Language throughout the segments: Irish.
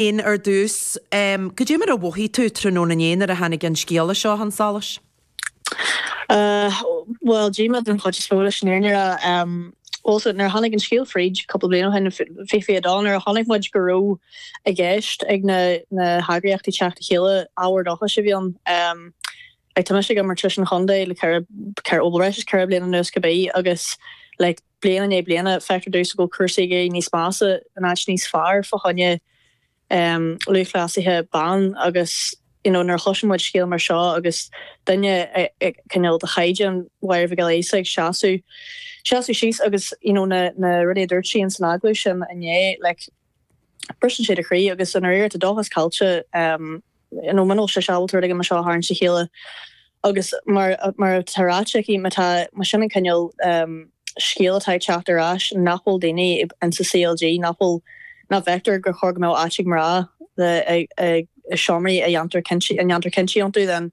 Ian, Ar dtús, cad é mar a mhothaigh tú tráthnóna inné nuair a tháinig an scéala seo chun solais? Bhuel, díomá den chuid is mó leis an fhírinne a rá. Bhuel, nuair a tháinig an scéal fríd cúpla bliain ó shin, fiche fiche dó, nuair a chonaic muid go raibh i gceist ag na heagraíochtaí teacht le chéile, ábhar dóchais a bhí ann. Tá mise ag imirt leis an chontae le bhuel breis is ceithre bliana anuas cibé agus like, bliain i ndiaidh bliana, feictear domhsa go bhfuil cúrsaí ag éirí níos measa in áit níos fearr fá choinne lúthchleasaithe ban agus you know nuair a chloiseann muid scéal mar seo agus duine cineál de chaighdeán Mháire Mhic Giolla Íosa ag seasamh seasamh síos agus you know na na rudaí a dúirt sí in san agallamh sin inné like briseann sé do chroí agus i ndáiríre tá dóchas caillte agam nó muna bhfuil sise ábalta you know seo a tharraingt le chéile agus mar mar atá ráite aici má tá más é sin an cineál scéal atá ag teacht ar ais nach bhfuil daoine ins an CLG nach bhfuil nach bhfeictear gur chóir go mbeadh áit ag mná le i seomraí a ndéantar cinntí a ndéantar cinntí iontu then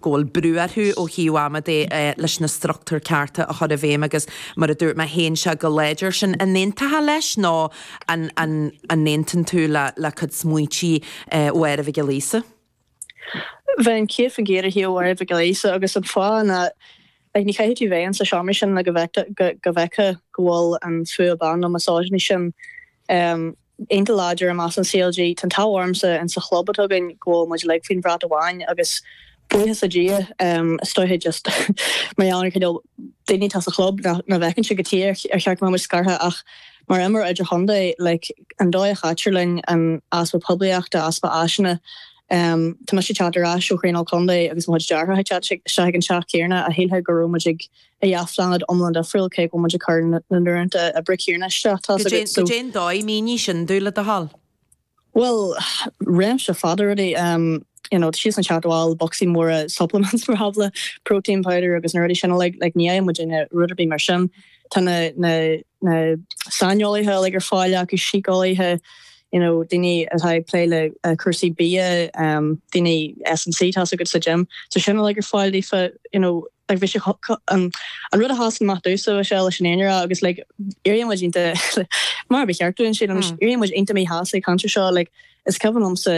go bhfuil brú orthu ó thaobh ama de leis na struchtúir cearta a chur i bhfeidhm agus mar a dúirt mé théann sí go láidir sin an aontófá leis nó an an an n-aontaíonn tú le le cuid smaointí Mháire Mhic Giolla Íosa? Bheinn céad faoin gcéad ar thaobh Mháire Mhic Giolla Íosa agus an fáth ná like, ní chaithfidh tú bheith insa seomra sin le go bhfeicfeá go bhfuil an fuath ban nó misogyny sin um, Iontach láidir i measc an CLG. Tá an t-ádh ormsa insa chlub atá againn go bhfuil muid uilig faoin bhrat amháin agus buíochas le Dia, is dóiche just mar gheall ar an cineál daoine atá sa chlub nach bhfeiceann siad cad chuige ar cheart go mbeadh muid scartha ach mar imreoir idirchontae like an dóigh a chaitear linn, an easpa poiblíochta, easpa áiseanna. Tá mise ag teacht ar ais ó thraenáil contae agus mo chuid deartháireacha ag teacht isteach ag an teach céanna shílfeá go raibh muid ag ó dhá phláinéad iomlán difriúil cé go bhfuil muid ag cur na n-uaireanta oibre céanna isteach. Cad é an dóigh, mínigh sin dúinn le do thoil. Bhuel, réimse fada rudaí, you know, siadsan ag teacht abhaile le bocsaí móra supplements mar shampla, protein powder agus na rudaí sin uilig, like ní fhaigheann muid aon rud ar bith mar sin. Tá na, na, na saineolaithe uilig ar fáil acu, síceolaithe, you know, daoine atá ag plé le cúrsaí bia, daoine S&C tá a fhios agat sa gym, tá sin uilig ar fáil daofa, you know, Like bhí sé an rud a sheasann amach domhsa is mó leis an fhírinne a rá agus like éiríonn muid iontach mar ba cheart dúinn sin anois éiríonn muid iontach míshásta ag caint air seo like is cuimhin liomsa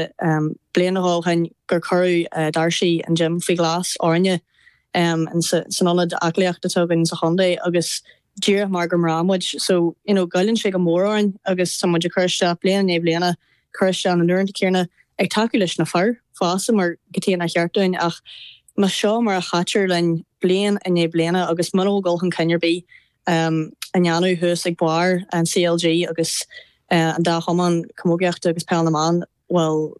bliain nó dhó ó shin gur cuireadh doirse an gym faoi ghlas orainne in san ionad aclaíochta atá againn sa chontae agus díreach mar gur mná muid so you know goilleann sé go mór orainn agus tá muid ag cur isteach bliain i ndiaidh bliana cur isteach na n-uaireanta céanna ag tacú leis na fir fosta mar cad chuige nár cheart dúinn ach más seo mar a chaitear linn bliain i ndiaidh bliana agus muna bhfuil dul chun cinn ar bith um, á dhéanamh thuas ag barr an CLG agus uh, an dá chumann camógaíochta agus peil na mban bhuel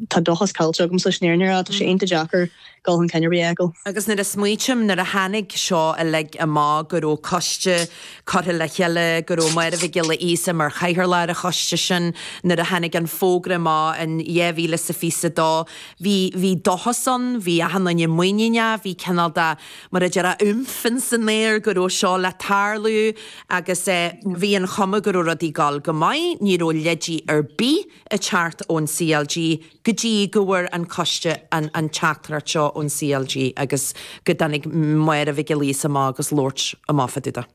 tá an dóchas caillte agamsa leis an fhírinne a rá, tá sé iontach deacair dul chun cinn ar bith a fheiceáil. Agus nuair a smaoitim, nuair a tháinig seo uilig amach, go raibh coiste curtha le chéile, go raibh Máire Mhic Giolla Íosa mar chathaoirleach ar an choiste sin, nuair a tháinig an fógra amach in 2022, bhí, bhí dóchas ann, bhí achan duine muiníneach, bhí cineál de, mar a déarfá, umf ins an aer go raibh seo le tarlú. Agus bhí an chuma go raibh rudaí dul go maith, ní raibh leid ar bith ag teacht ón CLG go dtí go bhfuair an coiste an teachtaireacht seo ón CLG agus go dtáinig Máire Mhic Giolla Íosa amach agus labhairt amach fá dtaobh de.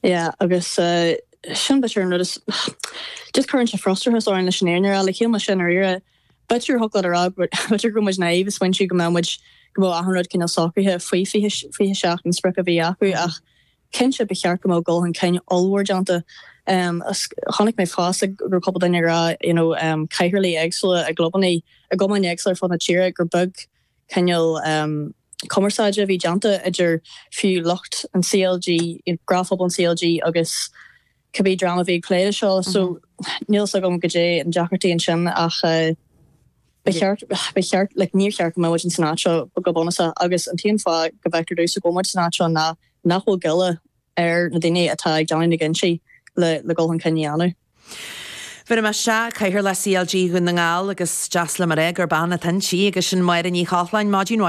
Yeah agus sin b'fhéidir an rud is, just cuireann sé frustrachas orainn leis an fhírinne a rá, like ag amharc siar air. B'fhéidir thiocfadh leat a rá go raibh muid naive ag smaointiú go mbeadh muid, go mbeadh achan rud cineál socraithe faoi 20, 27, an sprioc a bhí acu ach cinnte ba cheart go mbeadh dul chun cinn ollmhór déanta is chonaic mé fosta go raibh cúpla duine ag rá you know cathaoirligh éagsúla i gclubannaí, i gcumainn éagsúla ar fud na tíre gur beag cineál cumarsáide a bhí déanta idir fiú lucht an CLG, you know gnáthphobal an CLG agus. cibé dream a bhí ag plé leis seo so níl fhios agam goidé an deacracht a bhí ansin ach ba cheart ba cheart le níor cheart go mbeadh muid ins an áit seo go bunúsach agus an t-aon fáth go bhfeictear domhsa go bhfuil muid san áit seo ná nach bhfuil goile ar na daoine atá ag déanamh na gcinntí le le dul chun cinn a dhéanamh. Bhéarfaidh mé isteach cathaoirleach CLG Dhún na nGall agus deas liom a rá gur bean atá inti agus sin Máire Ní Chochláin, maidin mhaith,